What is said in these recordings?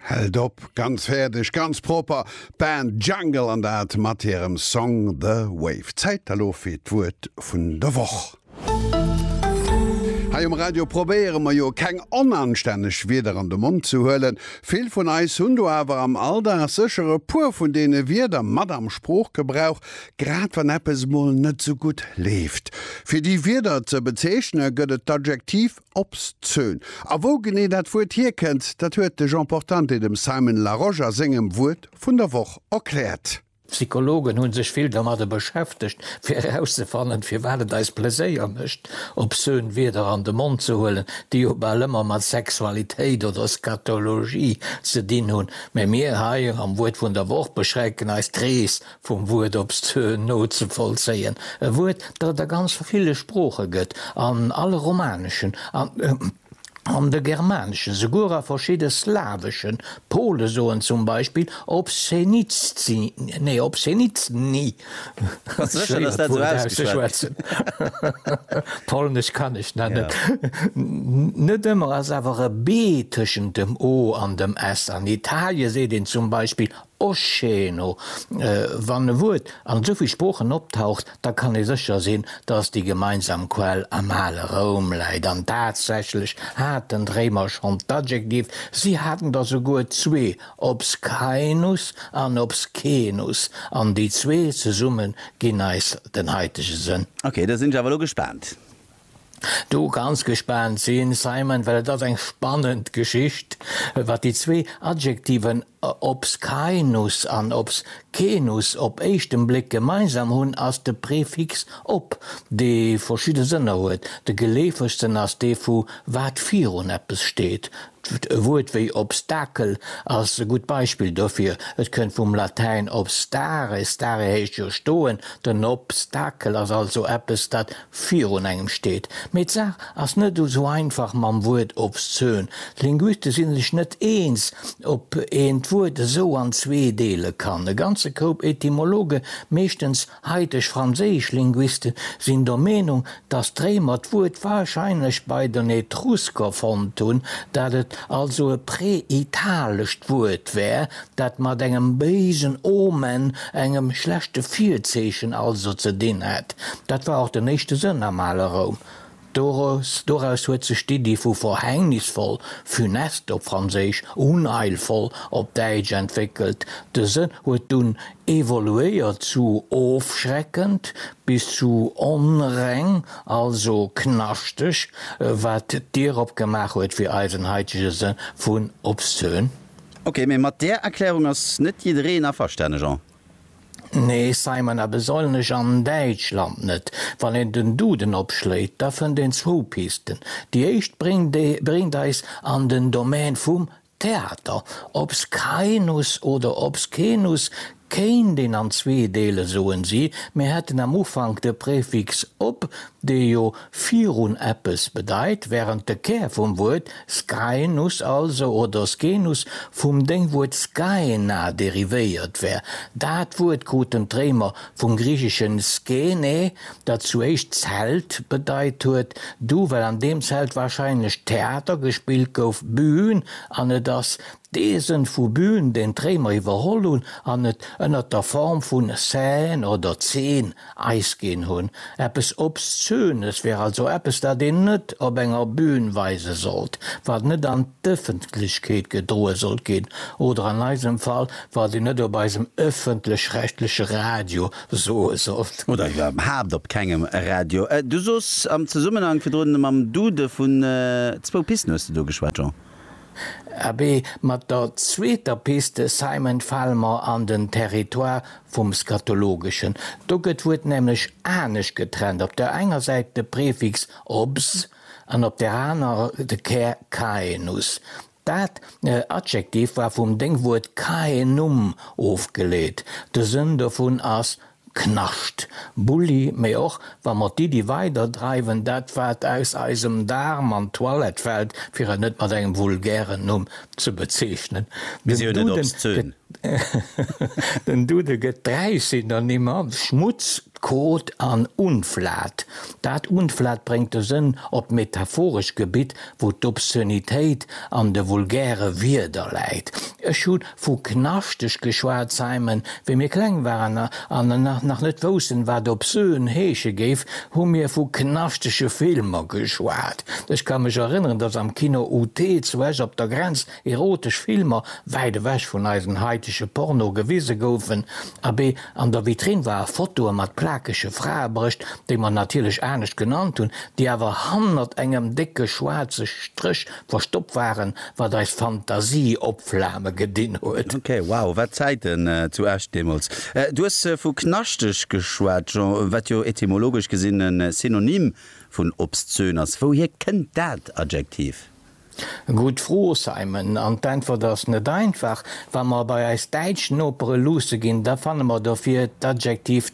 Held op, ganz fäerdeg, ganz propper, d'Band Jungle an dat mat hirem Song The Wave. Zäit elo fir d'Wuert vun der Woch. Hei um Radio probéiere mer jo keng onanstänneg Wierder an de Mond ze huelen. Vill vun eis hunn do awer am Alldag sécher e puer vun deene Wierder mat am Sproochgebrauch, grad wann eppes mol net esou gutt leeft. Fir déi Wierder ze bezeechne gëtt et d'Adjektiv Obszön. A wou genee dat Wuert hierkënnt, dat huet de Jean Portante dem Simon Larosche a sengem Wuert vun der Woch erkläert. Psychologen hu sech vill domadder beschäftegt, fir erauszefannen, firwat et eis Pleséier mécht, obszön Wierder an de Mond ze huelen, déi jo bal ëmmer mat Sexualitéit oder Scatologie ze dinn hunn. Mä mir hei am Wuert vun der Woch beschränken eis d'Rees Vum Wuert op s nozevollzéien, e Wuert, dat et a ganz ville Sprooche gëtt, an alle romaneschen, an de germaneschen, souguer a verschidde slaweschen, d'Pole soen zum Beispill obszenitscy, nee, obszenitsny, et ass schwéier, dat Wuert auszeschwätzen, polnesch kann ech dat net, net ëmmer ass awer e B tëschent dem O an dem S. An Italie seet een zum Beispill Oscheeno, Wann e Wuert an esou vill Sproochen optaucht, da kann ee sécher sinn, datt déi gemeinsam Quell am ale Roum läit. An tatsächlech haten d'Réimer schonn d'Adjektiv, si haten der souguer zwee, obscaenus an obscenus, an déi zwee zesumme ginn eis den haitege Sënn. Ok, da sinn ech awer elo gespaant. do ganz gespaant sinn, Simon, well et ass eng spannend Geschicht, wat déi zwee Adjektiven obscaenus an obscenus op éischten Bléck gemeinsam hunn, ass de Prefix ob, dee verschidde Sënner huet. De geleefegsten ass dee vu wat virun eppes steet. E Wuert wéi Obstakel ass e gutt Beispill dofir. Et kënnt vum Latäin obstare, stare heescht jo stoen, den Obstakel ass also eppes, dat virun engem steet. Mee d'Saach ass net esou einfach mam Wuert obszön. D'Linguiste si sech net eens, ob een d'Wuert esou an zwee deele kann. E ganze Koup Etymologe, meeschtens haiteg franséisch Linguisten, sinn der Meenung, datt d'Réimer d'Wuert warscheinlech bei den Etrusker fonnt hunn, dat et also e präitalescht Wuert wär, dat mat engem béisen Omen, engem schlechte Virzeechen also, ze dinn hat. Dat war och den éischte Sënn am ale Roum. Doraus, doraus huet sech d'Iddi vu verhängnisvoll, funeste op Franséisch, unheilvoll op Däitsch, entwéckelt. De Sënn huet dunn evoluéiert zu ofschreckend bis zu onreng, also knaschteg, wat d'Dier opgemaach huet fir eisen haitege Sënn vun obszön. Ok, mee mat där Erklärung ass net jiddereen averstane, Jean. Nee, Simon, a besollnech an Däitschland net. Wann een den Duden opschléit, da fënnt een zwou Pisten. Déi éischt bréngt eis an den Domän vum Theater. Obscaenus oder Obscenus Kéint een an zwee deelen, soen si. Mir hätten am Ufank de Prefix op, dee jo virun eppes bedeit, wärend de Kär vum Wuert Skai'nus also, oder Scenus, vum Déngwuert Skaena derivéiert wär. Dat Wuert kruten d'Réimer vum griicheschen Skene, dat zu éischt Zelt bedeit huet, du well an deem Zelt warscheinlech Theater gespillt gouf, Bühn, an et ass D'Eesen vu Bühn den d'Réimer iwwerholl hunn an et ënnert der Form vun Seine oder Zeen Eis ginn hunn. Eppes Obszönes wär also eppes, dat een net op enger Bühn weise sollt, wat net an d'Ëffentlechkeet gedroe sollt ginn oder an eisem Fall, wat een net op eisem ëffentlech-rechtleche Radio soe sollt. Oder iwwerhaapt op kengem Radio. Du soos am Zesummenhank virdrun mam Dude vun zwou Pisten, hues de do geschwat, Jean? Abee, mat der zweeter Piste Simon fale mer an den Territoire vum Scatologeschen. Do gëtt d'Wuert nämlech anescht getrennt, op der enger Säit de Prefix obs an op där anerer de Kär caenus. Dat Adjektiv war vum Déngwuert caenum ofgeleet, de Sënn dovun ass Knascht, Bulli, mee och wa mer d'Iddi weider dreiwen, dat wat aus eisem Daarm an d'Toilette fällt, fir et net mat engem vulgären Numm ze bezeechnen, den Dude gëtt dräi Synonymmer, Schmutz, Kot an Unflat. Dat Unflat bréngt de Sënn op d'metaphorescht Gebitt, wou d'Obszönitéit an de vulgäre Wierder läit. Ech hu Vu knaschteg geschwat, Simon. Wéi mir kleng waren an nach net woussten, wat obscen heesche géif, hu mir vu knaschtege Filmer geschwat. Ech ka mech erënneren, dass am Kino UT zu Esch op der Grenz erotesch Filmer, wäit ewech vun eisen haitege Porno, gewise goufen. Abee, an der Vitrinn war e Fotoe mat plakege Fraebrëscht, déi mer natierlech anescht genannt hunn, déi awer hannert engem décke schwaarze Stréch Verstoppt waren, wat eis Fantasie opflame gedinn huet. Ok, wow, wat Zäiten zu Esch deemools. Du hues vu knaschteg geschwat, Jean, wat jo etymologesch gesinn e Synonym vun obszön ass. Wouhier kënnt dat Adjektiv? Gutt Fro, Simon, an d'Äntwert ass net einfach. Wa mer bei eis däitsch Nopere luusse ginn, da fanne mer dofir d'Adjektiv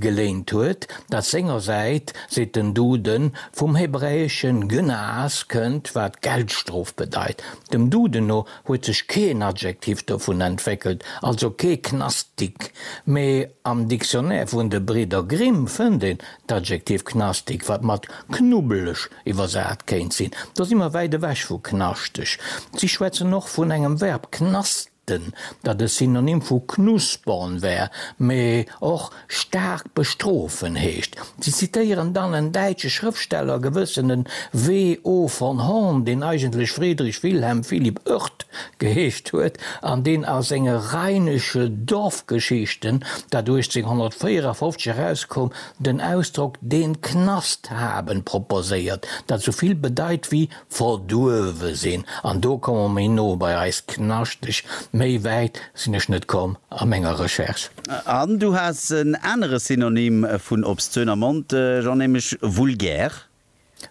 geléint huet, dat sengersäit, seet den Duden, vum hebräesche Gnas kënnt, wat Geldstrof bedeit. Dem Duden no huet sech keen Adjektiv dovun entwéckelt, also kee Knastik, mee am Dictionnaire vun de Bridder Grimm fënnt een d'Adjektiv knastig, wat mat knubbeleg iwwersat kéint sinn. Do si mer wäit ewech vu knaschteg. Si schwätzen och vun engem Verb, knastern. Den, dat e Synonym vu knuspern wär, mee och staark bestrofen heescht. Si zitéieren dann en däitsche Schrëftsteller, gewëssene W. O. von Horn, deen eigentlech Friedrich Wilhelm Philipp Oerth geheescht huet an deen a senge Rheinische Dorfgeschichten, dat 1854 erauskoum, den Ausdrock den Knast haben proposéiert, dat esou vill bedeit wéi Verduerwe sinn, an do komme mer méi no bei eis Knaschteg. Méi wäit sinn ech net komm a menger Recherche. An du has en anere Synonym vun obszön am Mond, Jean, nämlech vulgär.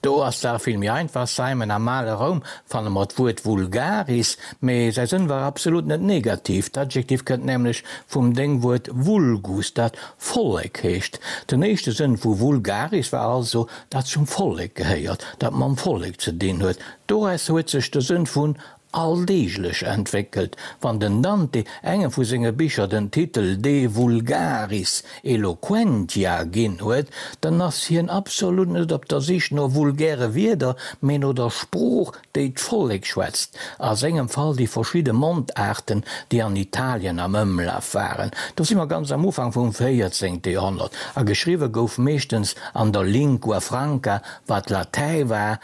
Do ass d'Saach vill méi einfach, Simon, Am ale Roum fanne mer d'Wuert vulgaris, mee säi Sënn war absolut net negativ. D'Adjektiv kënnt nämlech vum Déngwuert vulgus, dat Vollek heescht. Den éischte Sënn vu vulgaris war also dat zum Vollek gehéiert, dat mam Vollek ze dinn huet, doraus huet sech de Sënn vun alldeeglech entwéckelt. Wann den Dante engem vu senge Bicher den Titel De vulgaris eloquentia ginn huet, dann ass hien absolut net op der Sich no vulgäre Wierder, mee no der Sprooch, déi d'Vollek schwätzt, a sengem Fall déi verschidde Mondaarten, déi an Italien am Ëmlaf waren, do si mer ganz am Ufank vum véierzéngte Joerhonnert, a geschriwwe gouf meeschtens an der Lingua Franca, wat Latäi war,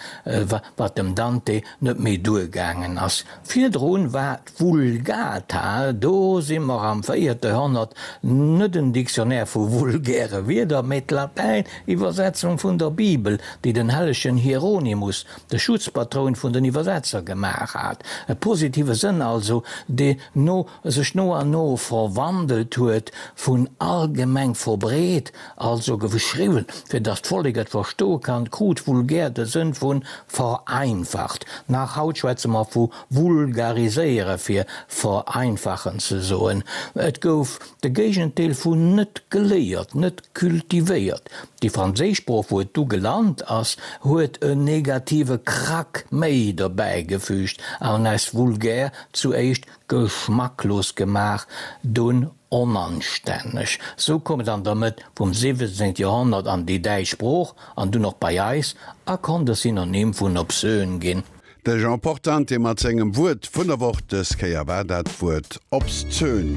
wat dem Dante net méi duergaangen ass. Virdru war d'Vulgata, do si mer am véierte Joerhonnert, net en Dictionnaire vu vulgäre Wierder, mä d'Latäin-Iwwersetzung vun der Bibel, déi den hellegen Hieronymus de Schutzpatroun vun den Iwwersetzer gemaach hat, e positive Sënn also, dee no sech no an no verwandelt huet, vun allgemeng verbreet, also geschriwwen, fir datt d'Vollek et verstoe kann, krut vulgär de Sënn vu vereinfacht. Nach haut schwätze mer vu vulgariséiere fir vereinfachen ze soen. Et gouf De Géigendeel vun net geléiert, net cultivéiert. Déi franséisch Sprooch, wou et du gelant ass, huet en negative Krack méi dobäi gefüügt an aus vulgär zuéischt geschmacklos gemaach, dunn onanstänneg. Sou koum et an der Mëtt vum 17. Joerhonnert an déi däitsch Sprooch an dunn och bei eis a konnt e Synonym vun obsön ginn. De Jean Portante mat sengem Wuert vun der Woch, dës Kéier war dat d'Wuert obszön.